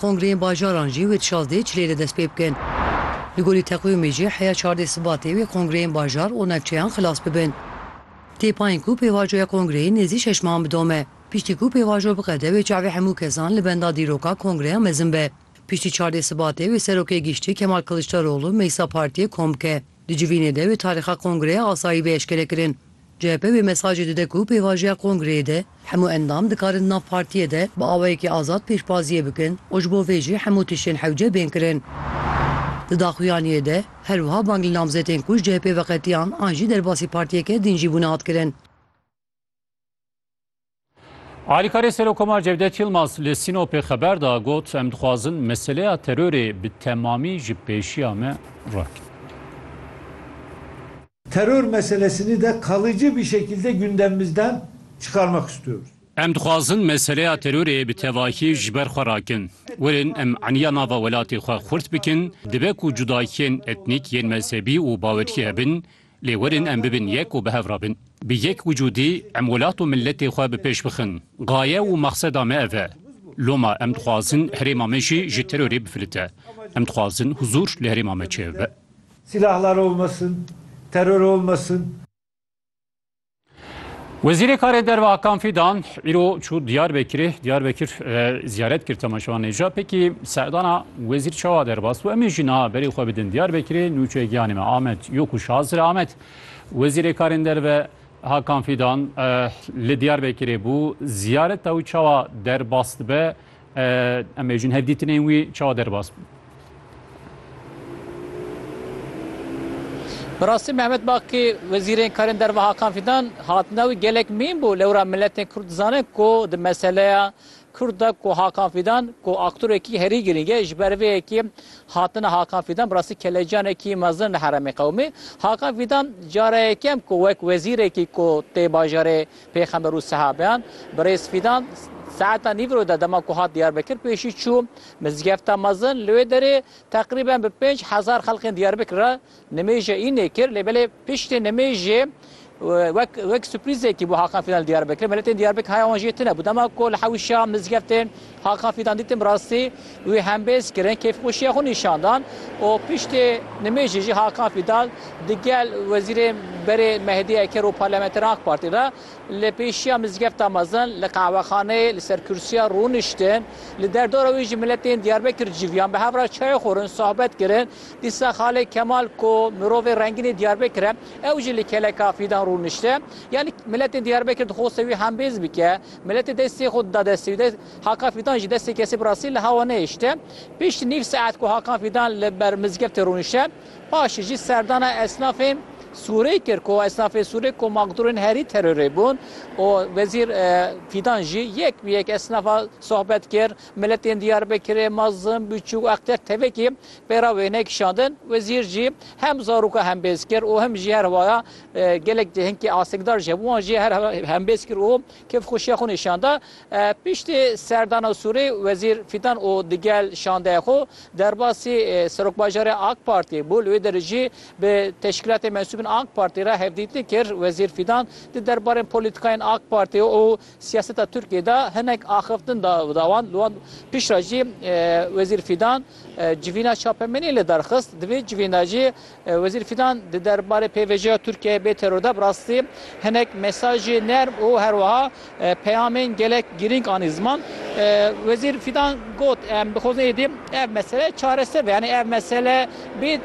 Kongreyên bajaran jî wê di şazdehê çilê de destpê bikin. Li gorî teqwîmê jî heya çardê Sibatê wê kongreyên bajar û navçeyan xilas bibin. Têpayîn ku pêvajoya kongreyê nêzî şeş mehan bidome. Piştî ku pêvajo biqede wê çavê hemû kesan li benda dîroka kongreya mezin be. Piştî çardê Sibatê wê Serokê Giştî Kemal Kiliçdaroglu meclisa partiyê kom bike. Di civînê de wê tarîxa kongreya asayî bê eşkerekirin. CHP wê mesajê dide ku pêvajiya kongreyê de hemû endam dikarin di nav partiyê de bi awayekî azad pêşbaziyê bikin û ji bo vê jî hemû tiştên hewce bên kirin. Di daxuyaniyê de her wiha bang li namzetên ku ji CHP'ê veqetiyan an jî derbasî partiyeke din jî bûne hat kirin. Alîkarê Serokkomar Cevdet Yilmaz li Sînopê xeber da got em dixwazin meseleya terorê bi temamî ji pêşiya me rakin. Teror meselesini de kalıcı bir şekilde gündemimizden çıkarmak istiyoruz. Em dixwazin meseleya terorê bi tevahî ji ber xwe rakin. Werin em eniya nava welatê xwe xurt bikin, dibe ku cudakiyên etnîk yên mezhebî û bawerî hebin, Lê werin em bibin yek û bi hev re bin. Bi yek wicûdî em welat û miletê xwe bi pêş bixin. Gaye û mexseda me ev e. Loma em dixwazin herêma me jî ji terorê bifilite. Em dixwazin huzûr li herêma me çêbibe. Silahlar olmasın, terör olmasın. Wezîrê Karê Derve Hakan Fîdan îro çû Diyarbekirê, Diyarbekir ziyaret kir temaşevan nêja. Pekî serdana wezîr çawa derbas û em ê jî niha berê xwe bidin Diyarbekirê nûçe giyanê me Amed yo ku şazir Amed. Wezîrê Karên Derve Hakan Fîdan li Diyarbekirê bû ziyareta wî çawa derbas dibe. Em ê jin hevdîtinên wî çawa derbas bin. Bi rastî Mehmet Bakî Wezîrên Karên Derve Hakan Fîdan hatina wî gelek mîn bû. Lewra miletên Kurd dizane ku di meseleya Kurd de ku Hakan Fîdan ku aktorekî herî girîng e ji ber vê yekê hatina Hakan Fîdan bi rastî kelecanekî mezin li heremê qewimî. Hakan Fîdan cara yekem ku wek wezîrekî ku tê bajarê Pêxember û sehabeyan, Birêz Fîdan saeta nîvro de dema ku hat Diyarbekir pêşî çû mizgefta mezin li wê derê teqrîben bi pênc hezar xelkên Diyarbekir re nimêje înê kir lê belê piştê nimêjê wek wek suprîzekî bû Hakan Fîdan li Diyarbekir miletên Diyarbekir haya wan jê tune bû dema ku li hewişa mizgeftên Hakan Fidan dîtim bi rastî wî hembêz kirin, kêfxweşiya xwe nîşan dan û piştî nimêjê jî Hakan Fidan di gel Wezîrê Berê Mehdî Eker û parlamenteran AK Partî re li pêşiya mizgefta mezin li qehwexaneyê li ser kursîya rûniştin. Li derdora wê jî miletên Diyarbekir civiyan bi hev re çayê xwarin, sohbet kirin. Dîsa Xalê Kemal ku mirovê rengînê Diyarbekir e ew jî li keleka Fidan rûnişte. Yanî miletên Diyarbekir dixwaste wî hembêz bike. Miletê destê xwe dida destê wî de. Hakan Fîdan ji destê kesê bi rastî li hewa nehişte. Pişt nîv saet ku Hakan Fîdan li ber mizgeftê rûnişte, paşê jî serdana esnafên Sûrê kir ku esnafên Sûrê ku maqdûrên herî terorê bûn û Wezîr Fîdan jî yek bi yek esnafa sohbet kir. Miletên Diyarbekirê, Mazim, Biçûk, Akter tevekî pêra wê nekişandin. Wezîr jî hem zaroka hem bêz kir û hem jî her waya Gelek di hinkê astikdar ji hev wan jî her hembêz kir û kêfxweşiya xwe nîşan da. Piştî serdana Sûrê Wezîr Fîdan û digel şandeya xwe derbasî Serokbajarê AK Partî bû. Li wê derê jî bi teşkîlatê mensûbên AK Partî re hevdîtin kir. Wezîr Fîdan di derbarên polîtîkayên AK Partî û siyaseta Tirkiyeyê de hinek axiftin da da wan. Li wan piştre jî Wezîr Fîdan civîna çapemeniyê lidarxist. Di vê civîna jî Wezîr Fîdan di derbarê pêvajoya Tirkiyeyê bê teror de bi rastî hinek mesajê nerm û her wiha peyamên gelek girîng anî ziman. Wezîr Fîdan got, Em dixwazin êdî ev mesele çareser be yanî ev mesele bê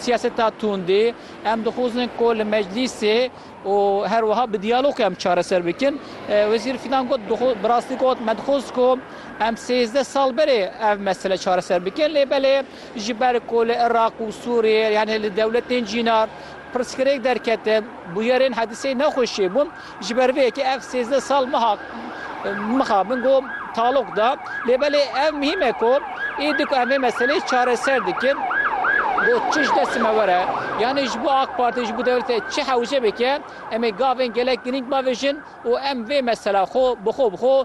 siyaseta tundî. Em dixwazin ku li meclîsê û her wiha bi diyalog em çareser bikin. Wezîr Fîdan got, Bi rastî got me dixwaz ku em sêzdeh sal berê ev mesele çareser bikin lê belê Ji ber ku li Iraq û Sûriyê yanê li dewletên cînar pirsgirêk derkete, bûyerên hediseyê ne xweş çêbûn. Ji ber vê yekê ev sêzdeh sal meha mexa min got talok da. Lê belê ev mihîm e ku êdî ku em vê meseleyê çareser dikin got çi ji destê me were yanê ji bo AK Parti ji bo dewlete çi hewce bike em ê gavên gelek girîng bavêjin û em vê mesela xwe bi xwe bi xwe